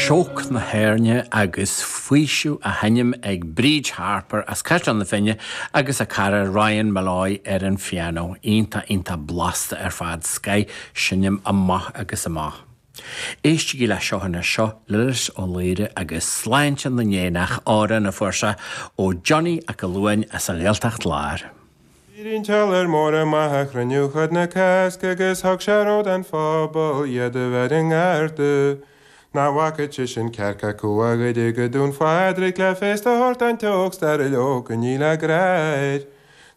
Shock na hÉirne agus faoiseamh á sheinm ag Bríd Harper as Caisleán na Finne agus a cara Ryan Molloy ar an phianó. Iontach, iontach blasta ar fad. Scoith seinm amach agus amach. Éistigí leis seo anois, seo Lillis Ó Laoire agus Sláinte na nÉanach, amhrán a fuair sé ó Johnny 'ac a Luain as an Ghaeltacht Láir. D'éirigh an t-iolar mór amach a chruinniú chuid na Cásca agus thug sé rabhadh don phobal iad a bheith ina ngarda nach bhfágfadh sé sin cearc acu ó Dhoire go Dún Phádraig le féasta a thabhairt don teocht stairiil Ó Coinníll a gcreid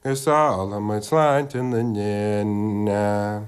agus ólaimid sláinte na n-éanach.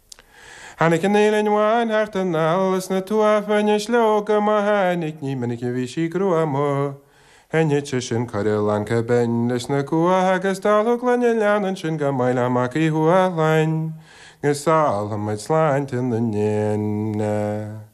Tháinig an fhaoileann bhán thart anall leis na tuathbhain is leoga má tháinig ní minic a bhí sí gruama. Chanfadh sí sin curfá lán chomh binn leis na cuacha agus dáileadh gloine leanna ansin go mbeidh le Mac Uí Thuathlainn. Agus ólaimid sláinte na n-éanach.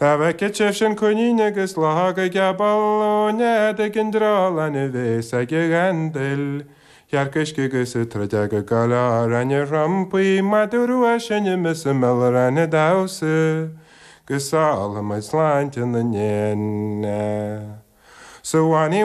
Dá bhfeicfeadh sibh sin coinín agus luchóg ag gabháil ó nead ag an dreolán i bhféasóg an ghandail, an chearc uisce 'gus an truideog ag gabháil ar na trumpaí madadh rua ag seinm is an mil ran ag damhsa 'gus ólaimid sláinte na n-éan. Sa bhannaí